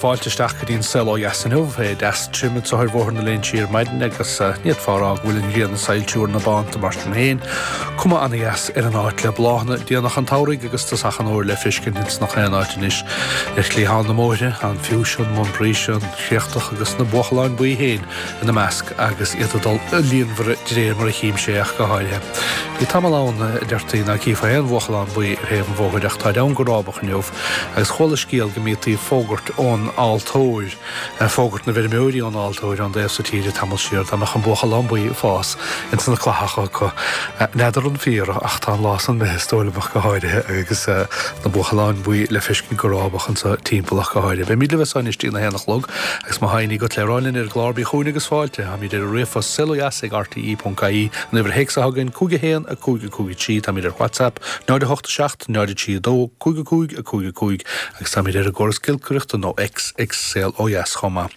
Fáilte isteach go dtí an saol ó dheas inniu. Bhí sé deas tirim anso thar Bhóthar na Léinsí ar maidin agus ní fheadar ná go bhfuil an ghrian ag soilsiú ar na bánta mar sin féin. Cuma an-dheas ar an áit le bláthanna déanach an tsamhraidh agus dósachán úr le feiscint ins na h-aon áit anois. Le cliatháin na mbóithre, an fiúise, an montbretia, an chríochtach agus na buachaláin buí féin ina measc agus iad ag dul i líonmhaire de réir mar a chímse ach go háirithe. Bhí tamall ann, a deirtí, ná cífeá aon bhuachalán buí ar thaobh an bhóthair ach táid siad ann go rábach inniu. Agus chuala scéal go mbítí ag fógairt ón altóir, fógairt na bhfeirmeoirí ón altóir, an taobh so tíre tamall siar, dá mbeadh an buachalán buí ag fás ins na clathacha acu. N'fheadar an fíor ach tá an lá san imithe is dóigh liom ach go háirithe agus na buachaláin buí le feiscint go rábach anso timpeall ach go háirithe. Beimid libh anso anois dtí na haon a chlog agus má tá aon ní agat le rá linn ar an gclár bí chúinn agus fáilte. Táimid ar an ríomhphost saoldeas ag rte.ie an uimhir théacs atá againn, 515 53, táimid ar Whatsapp, 0 8 7 0 3 2. 5 5 5 5 Agus táimid ar an gcóras giolcaireachta nó X, ag Saol Ó Dheas chomh maith.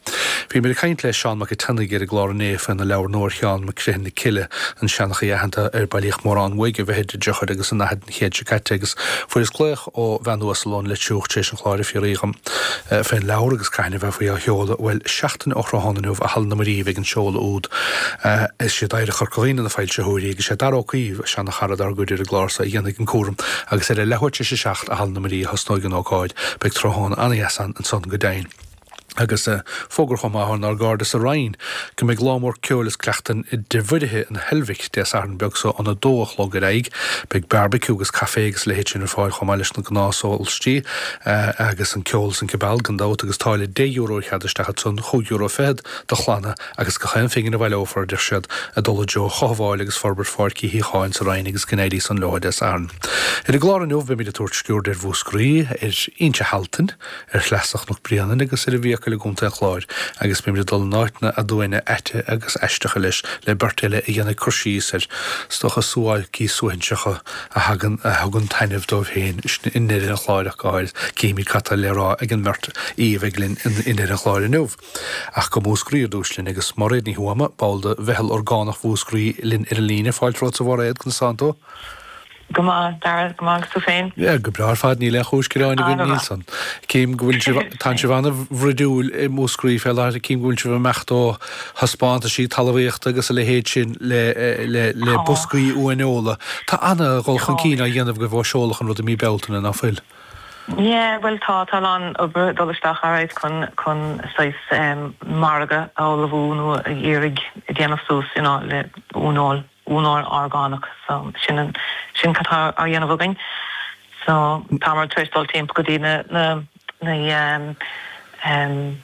Bhíomar ag caint le Seán Mac a' tSionnaigh ar an gclár inné faoina leabhar nua ar Sheán Mac Criomhthain na Cille, an seanchaí aitheanta ar bailíodh mórán uaidh i bhfichidí, i dtríochaidí agus i ndaichidí na haoise seo caite agus fuaireas glaoch ó bhean uasal ón Leitriúch tar éis an chláir ag fiafraí dhíom faoin leabhar agus caithin a bheifí á sheoladh. Bhuel, seachtain ó thráthnóna inniu i Halla na Máimíní a bheidh an seoladh úd. Is iad Oidhreacht Chorca Dhuibhne na foilsitheoirí agus sé Dara Ó Cinnéide, cara dár gcuid ar an gclár so a dhéanfaidh an cúram agus ar a leathuair tar éis a seacht i Halla na Marie a thosnóidh an ócáid. Beidh tráthóna an-dheas ann ansan go deimhin. Agus fógra chomh maith ónár gcairde sa Rinn go mbeidh lá mór ceoil is cuileachtan i dTigh Mhuirithe in Heilbhic Dé Sathairn beag so óna dó a chlog ar aghaidh. Beidh beárbaiciú agus caifé agus a leithéid sin ar fáil chomh maith leis na gnáth sólaistí agus an ceol is an cibeal gan dabht agus táille deich euro ar chead isteach ansan, chúig euro fichead do chlanna agus gach aon phingin a bhaileofar, beidh siad ag dul i dtreo chothabháil agus forbairt Pháirc Uí Shíothcháin sa Rinn agus go n-éirí san leo Dé Sathairn. Ar an gclár inniu beimid ag tabhairt sciúird ar Mhúscraí, ar Indreabhán, ar shleasa Chnoc Bréanainn agus ar an bhFiacail i gContae an Chláir agus beimid ag dul in áiteanna aduaine aite agus aisteacha leis le beirt eile a dhéanfaidh cur síos ar stoca suáilcí suaithinseacha a thagann a thugann taitneamh dóibh féin i ndeireadh an chláir ach go háirid. Cífimid cad tá le rá ag an mbeirt aoi a bheidh linn i ndeireadh an chláir inniu. Ach go Múscraí ar dtús linn agus Máiréad Ní Thuama, ball de Mheitheal Orgánach Mhúscraí linn ar an líne. Fáilte romhat a Mháiréad, conas atá tú? Go maith, Dara, go maith agus tú féin? Yeah, go breá ar fad, níl aon chúis gearáin againn, nílse. Cím go bhfuil sibh, tá sibh ana bhroidiúil i Múscraí fé láthair, cím go bhfuil sibh ag imeacht ó thaispeántaisí talamhaíochta agus a leithéid sin le, le, le boscaí uaineola. Tá ana dhul chun cinn á dhéanamh agaibh ó seoladh an rud i mí Bealtaine, ná fuil? Yeah, bhuel tá, tá a lán oibre dul isteach alright chun, chun saghas ehm margadh a ullmhú nó a iarraidh a dhéanamh suas you know le uaineoil, uaineoil orgánach so sin an, sin cad tá á dhéanamh againn. So táthar tar éis dul timpeall go dtí na, na, na ehm, ehm,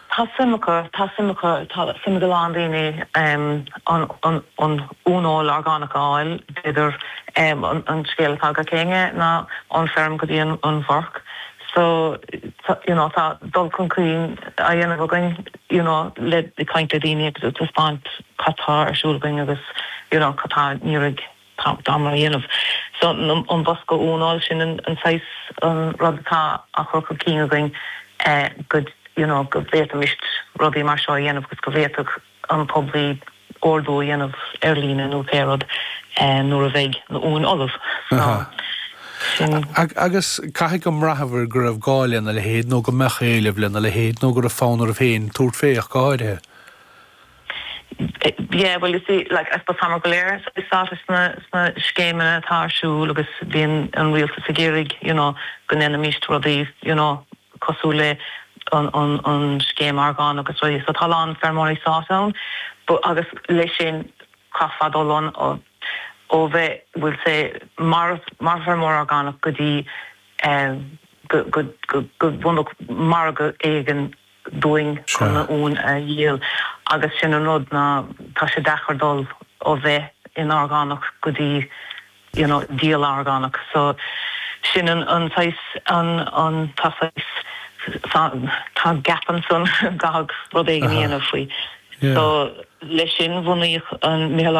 Tá suim acu, tá suim acu, tá suim ag a lán daoine an uaineoil orgánach a fháil, b'fhéidir an scéal atá againne ná ón feirm go dtí an bhforc so you know tá dul chun cinn á dhéanamh againn you know le caint le daoine agus taispeáint cad tá ar siúl againn agus you know cad tá, Táimid á dhéanamh so an bosca uaineoil sin an saghas rud atá á chur chun cinn againn go you know go bhféadfaimis rudaí mar seo a dhéanamh agus go bhféadfadh an poiblí ordú a dhéanamh ar líne nó pé rud nuair a bheidh na uain ullamh so sin. Agus caithfidh gur bhraitheabhair go raibh gá lena leithéid nó go mbeadh éileamh lena leithéid nó go raibh fonn oraibh féin tabhairt faoi ach go háirithe. Yeah, well you see, like, I suppose táimid go léir sáite sna scéimeanna atá ar siúl agus bíonn an rialtas ag iarraidh, you know, go ndéanfaimíst rudaí, you know, cosúil le an scéim orgánach agus rudaí, so tá a lán feirmeoirí sáite ann but agus leis sin chaithfeá dul ann ó bheith, we'll say, mar fheirmeoir orgánach go dtí go bhfaighfeá margadh éigin. dúinn Sea. chun na huain a dhíol agus sin an rud ná tá sé deacair dul ó bheith in orgánach go dtí you know díol orgánach so sin an an saghas an an tá saghas tá tá gap ansan go gcaithfí rud éigin a dhéanamh faoi so leis sin bhunaíodh an mheitheal